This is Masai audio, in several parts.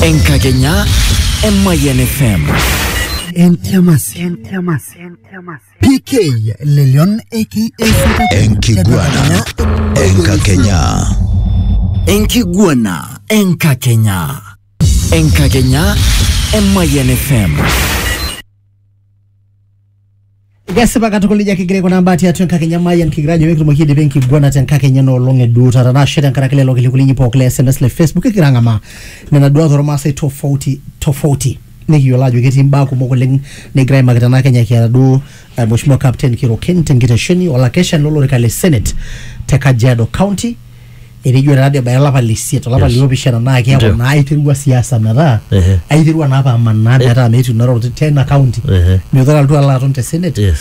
Enkakenya Emayian FM. Entiamasi. Entiamasi. Entiamasi. PK Lelion aka Enkiguana Enkakenya. Enkiguana Enkakenya. Enkakenya Emayian FM. Kesipa katukul ijo kigira kuna mbaa tiatua enkakenya Mayian kigira ajo mikitumoki aidipa enkiguana te enkakenya ena olong e duo taata nashe tenkaraki lelo kilikuai linyi pooki le SMS le Facebook kigira ang'amaa nena duat ormaasai tofauti tofauti nikiyiolo ajo ketii imbaa kumok oleng nikigira aimaki tena kenya kiata duo eh, Mheshimiwa Captain Kiroken tenkitesheni olakeshani lolorika le Senate te Kajiado County etejo taa dii ebaya olapa le isiet olapa Yes. liopishana naa keeku Ndio. naa aiterua siasa metaa Ehe. aiterua naa apa amanaa metaa metii ina roruata tena kaunti Ehe. metaa alotu alo aton te senate Yes.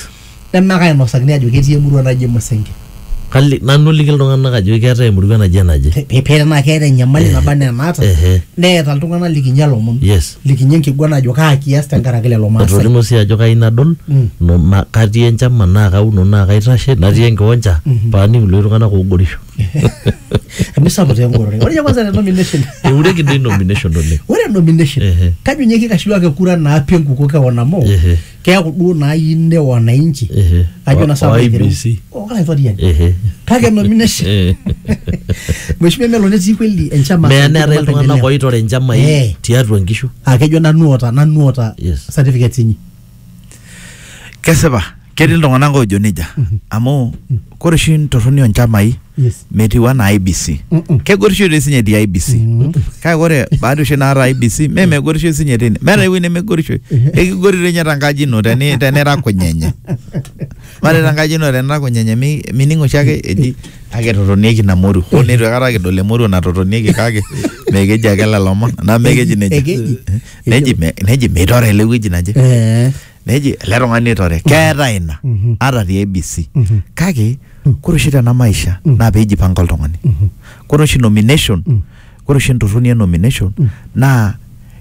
nemaka ainosakini ajo ketii emurua naji emusenge Kali, nanu oliki iltung'anak ajo keetae emurua naje naje. Pe- pe- pee tenaa keeta enyamali Ehe. naba anaa enaata Ehe. neeta iltung'anak likinya lomon Yes. likinyi enkiguana ajo kaa kias tenkaraki lelo maasai etolimuo sii ajo kayieu nadol Mm. no- na- katii enchama naa kauno naa kaitashe natii enkiwanja paaning iloi tung'anak oogorisho emisapuk taa engorore ore ninye kwanza te nomination eureki doi nomination oleng ore nomination Ehe. kajo ninye kikashiwaki kura naapi enkuko kewon amu Ehe. keaku duo naayieu ne wananchi Ehe. ajo Wa- na sababu wa aitereu. IEBC. Oh, olaitoriani Ehe. kake nomination Eh. mheshimiwa melo netii kweli enchama meya neetae Maendeleo. iltung'anak oitore nchamai Eh. tiatua nkishu Ah, kejo nanu oota nanu oota Yes. certificates inyi kesipa ketii iltung'anak oojo nejia amu Kore oshi ntorroni onchamai Yes. metiu anaa IBC. Mm-mm. Kegorisho dei sinye etii IBC. Kake kore baada oshi naata IBC mee megorisho sinye teine. Meeta ewueji nemegorisho. Ekigori dei ninye tenkaji ino teni tenira kunyenye. Mare tenkaji ino tenira kunyenye mi- mining oshi ake eji kake totonieki ina moruo. Hoo neitu aikata kidol emoruo natotonieki kake mee keji ake lelo omon. Naa mee keji nejia. Ekeji. Neji me- neji meitore ele wueji naje. Eh. neji ele tung'ani oitore keeta ina Mhm. ata te ABC Mhm. kake kore oshi tena maisha Mhm. naa peijipanga oltung'ani Mhm. kore oshi nomination Mm. kore oshi entorroni e nomination Mm. naa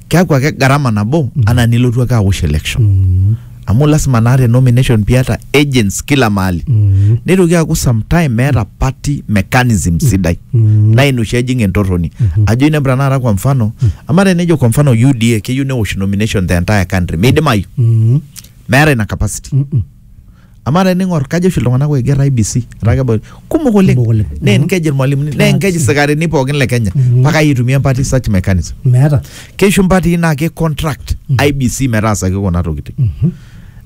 keaku ake gharama nabo anaa nilotu ake awosh election Mm. amu lasima naa te nomination piata agents kila mahali Mm. neitoki aaku sometime meeta party mechanism sidai naa ina oshi ejing entorroni ajo inepu tanakata kwa mfano ama tenejo kwa mfano UDA keyieu newosh nomination the entire country meidimayu Mm. meeta ina capacity Mm-mm. ama tening'or kajo oshi iltung'anak oiger IBC etaa kebol kumok oleng Kumok oleng. naa enkeji irmalimuni naa enkeji sikarini pookin le Kenya mpaka aitumia empati such mechanism meeta keishu mpatii naa ki contract IBC metaasaki kuna tokitin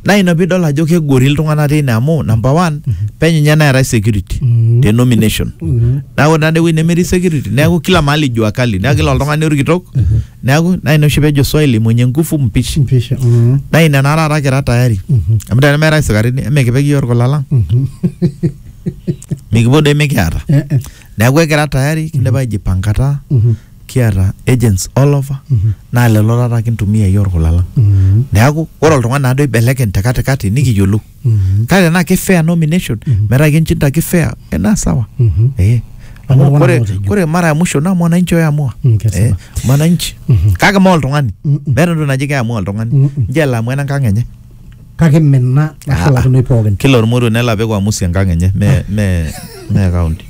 naa ina piidol ajo kegori iltung'anak teine amu number one penyo ninye neetae security Mhm. te nomination Mhm. neeku ore nade ewueji nemetii security neeku kila mahali jua kali neeku kila oltung'ani orkitok neeku naa ina oshi pejo swahili mwenye nguvu mpishi Mpisha. Mhm. naa ina naa taata kira tayari Mhm. amu tenemeetae isikarini emikipik iyiook irkulalang Mhm. mikipuo doi mikiata Eh, eh. neeku ekira tayari kindipa aijipankata Mhm. kiata agents all over Mhm. naa lelo taata kintumia iyie orkula lang Mhm. neeku ore oltung'ani naado ibelekeny te katikati nikiyiolou Mhm. kake tenaa ki fair nomination Mhm. metaa kinchinda ki fair eh, naa sawa Mhm. eh. Amu Amu iltung'anak kore ootejo. kore mara ya mwisho naa mwananchi oyaamua Mm, kesipa. eh, mwananchi Mhm. kake ma oltung'ani Mhm. meeta entoki naji keamua oltung'ani Mhm. nje elo amua enenkang enye kake mme ina nashulakinoi pookin. kila ormoruo nelo apik uamusi enkang enye me me me county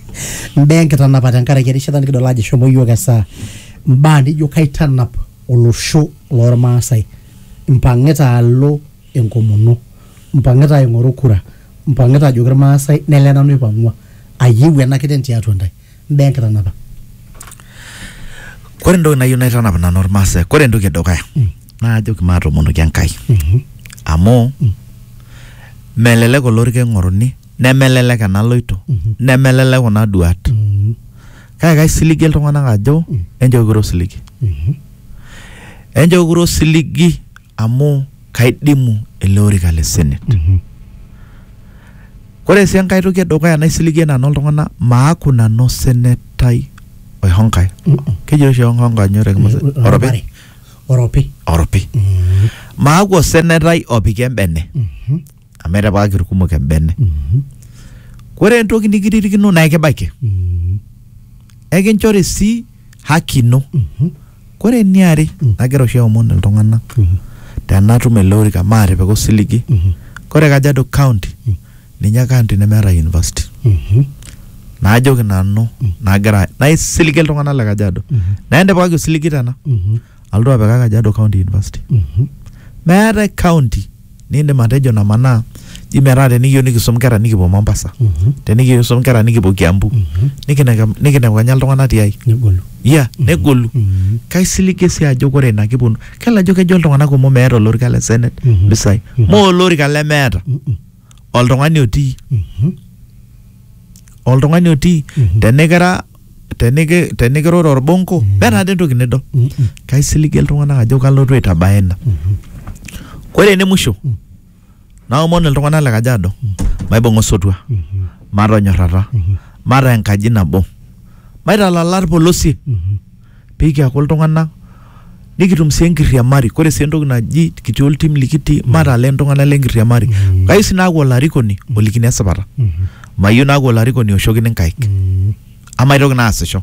Mbaa enkitanapa tenkaraki erishata nikidol ajo eshomo iyiook esaa. Mbaa nijo kaitanap olosho loormaasai, mpang'ita alo enkomono, mpang'ita aing'oru kura, mpang'ita ajoki irmaasai nele nanu aipang'ua ayieu ena kiteng tiatua intae. mbaa enkitanapa. Kore entoki nayieu naitanap nanu irmaasai, kore entoki edukuya naa ajoki maatomonoki Enkai amu melelek olorika ing'oruni, nemelelek enaloito, nemelelek kuna duaat. Kake kaisiligie iltung'anak ajo enchoo kiro osiligi, enchoo kiro osiligi amu kaidimu ele orika le senate ore sii enkae toki edukuya naisiligie nanu iltung'anak maaku nanu osenetai oihonkai keji oshi oihonkai nyoo te Kimasai? Oropi? oropi oropi maaku osenetai opiki embene amu etipikaki irkumok embene kore entoki nikiririkino naa ekibaiki ekinchori sii haki ino kore eniare nagira oshi aomon iltung'anak tenatum ele orika maatipika osiligi kore Kajiado county ninye county nemeeta university naajoki nanu nagira naisiligie iltung'anak le Kajiado naa entipikaki osiligi tena alotu apikaki Kajiado county university meetae county Niindim atejo namanaa ji metaa tenikiyieu nikisum nkera nikipuo Mombasa Mhm. tenikiyieu nikisum nkera nikipuo Kiambu Mhm. nikinek- nikinepu kenya iltung'anak tiai Negolu. ya negolu Mhm. kaisiligie sii ajo kore ina kiponu kelo ajo kejo iltung'anak kumok meeta olorika le senate Mhm. mpisai Mhm. moo olorika lemeeta Mhm. oltung'ani otii Mhm. oltung'ani otii Mhm. tenikira teniki- tenikiroro orbonko metaa dii entoki nidol kaisiligie iltung'anak ajo kalotu aitabaya ina ore ene musho naomon iltung'anak le kajiado maibung'a osotua matonyorrata mataa enkaji nabo maitalala irpolosien pee kiaku iltung'anak nikitum sii enkiriamari. Ore sii entoki naji kitii oltim likitii matalaa iltung'anak le nkiriamari. Kayieu sii naaku olarikoni olikini esipata. Mayieu naaku olarikoni oshokini nkaik. Amaitoki naa aasisho.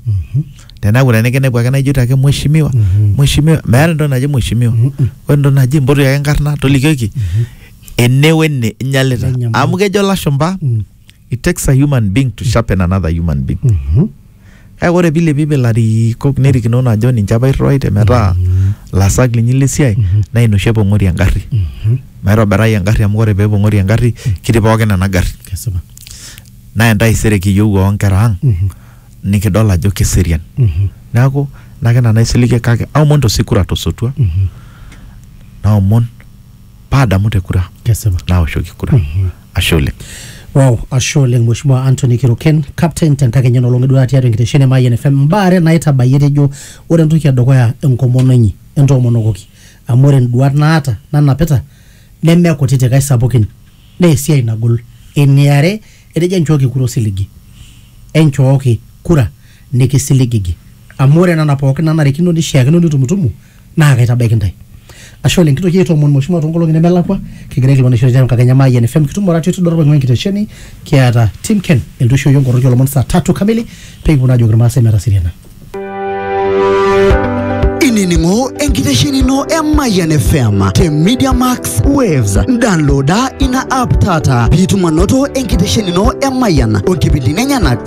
Teneeku tenikinepu ake naijoito ake mheshimiwa, mheshimiwa. Meeta entoki naji mheshimiwa. Ore entoki naji mpotu ake enkarna tolikioki ene wene inyalita. Amu kejo ilashumba it takes a human being to sharpen another human being Mhm. kake ore piilepi pilarikok nerikinono ajo ninche apa irriwaite metaa lasak linyi lesiai naa ina oshi epong'ori engarri Mhm. maitobirai engarri amu ore peepong'ori engarri kitii pookin ena garri Kesipa. naa entaisere kiyieu oonkera ang Mhm. nikidol ajo keserian Mhm. neeku nake nanu aisiligie kake aomon tosikura tosotua Mhm. naomon paadamu te kura kesipa naoshoki kura ashe oleng Wow, ashe oleng Mheshimiwa Anthony Kiruken, captain tenkakenya nolong eduaa tiatua enkitesheni e Mayian FM. Mbaa are naitabayie tejo ore entoki edukuya enkomono inyi, entoomonokoki. Amu ore nduat naata nanapita neme kutitik aisapukin naa esiai nagol. Eniare, etejo enchooki kura osiligi. Enchooki kura nikisiligigi. Amu ore nena pookin nanarikino nishiakino nitumutumu naa kaitabaiki ntae ashe oleng kitoki aitoomon mheshimiwa toonkolong'i nemelakua kigira aikilikuan eishori tiatua enkakenya Mayian FM kitum oratio tidorop aing'ua enkitesheni kiata Tim Ken elotu aisho iyiook nkoroki oolomon saa tatu kamili pee kipuo naa ajoki irmaasai metaseriana inining'o enkitesheni ino e Mayian FM te Media Max Waves. Downloada ina app taata piitum anoto enkitesheni ino e Mayian o nkipindini enyenak